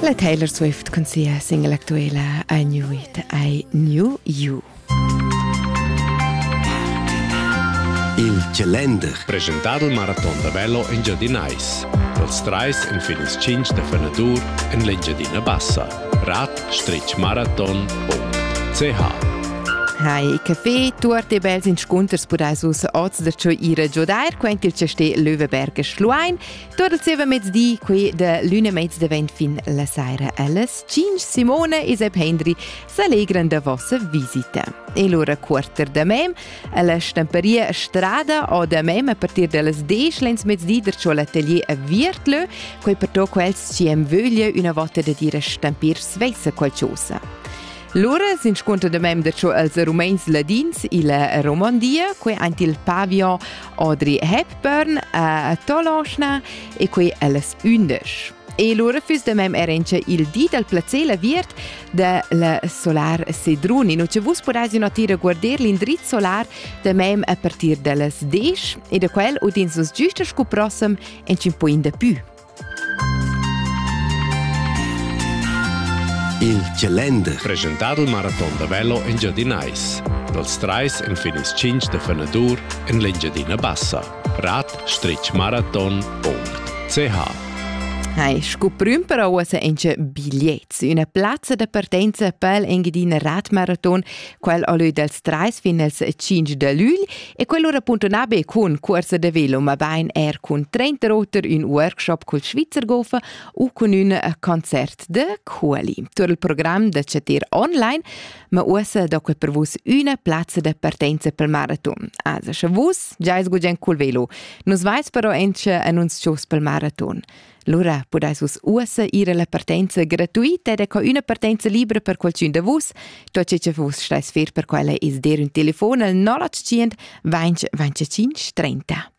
La Taylor Swift cun sia single actuela I Knew It, I Knew You. Il calender. Presentado il maraton da velo in Giadinais. Dals trais en fin ils cinc da fenadur en l'Engiadina Bassa. radstreetmarathon.ch Hai café, tuort e bels inscunters pudais vus oz da tscheu ira giudair, quent il chastè Löweberger Schluein. Tot il zieva mezdi, qui de l'una mezza vent fin la saira alles 5 Simone e Sep Hendri s'allegran da vossa visita. E l'ora quarter da mem, alla stamperia strada o da mem a partir dallas 10 lens mezdi der ciò l'atelier a Viertlö, quei per to quels ci am vöglia una volta da dire stampir sveisa qualcosa. Lura s'inscuntra da mem da cho els Rumeins ladins illa Romandia, quei aint il pavillon Audrey Hepburn a Toloschna e quei allas undisch. E lura füss da mem era incha il di dal placer la viert da la Solar Sedruni. Nu che vus podais notire guarder l'indriz solar da mem a partir da las 10 e da quel udins vos giusta scu prossem en 5 da pü. Il calender preschentà dal maraton da velo engiadinais dals trais enfin ils cinc da fenadur en l'Engiadina Bassa. Rad Stretch Marathon ord CH. Hai, scu prüm però uossa inche bigliets. Üna plazza da partenza pel Engiadina Radmarathon, quel alö dals 3 fin als 5 da lügl, E quello repuntuna be cun cuorsa de velo, ma bein er cun trenta oter ün workshop cul Schweizer Golf u cun ün concert de Quali. Tur il program de cetir online, ma uossa do que per vus üna plazza de partenza pel maraton. Also, sche vus giais gugent cul velo, nus vais però enche annunzios pel maraton. Lura pudais vus ussa ir alla partenza gratuita ed co üna partenza libra per qualcun da vus. Tot ce che vus stais fer per quella is der un telefon al 085 20 25 30.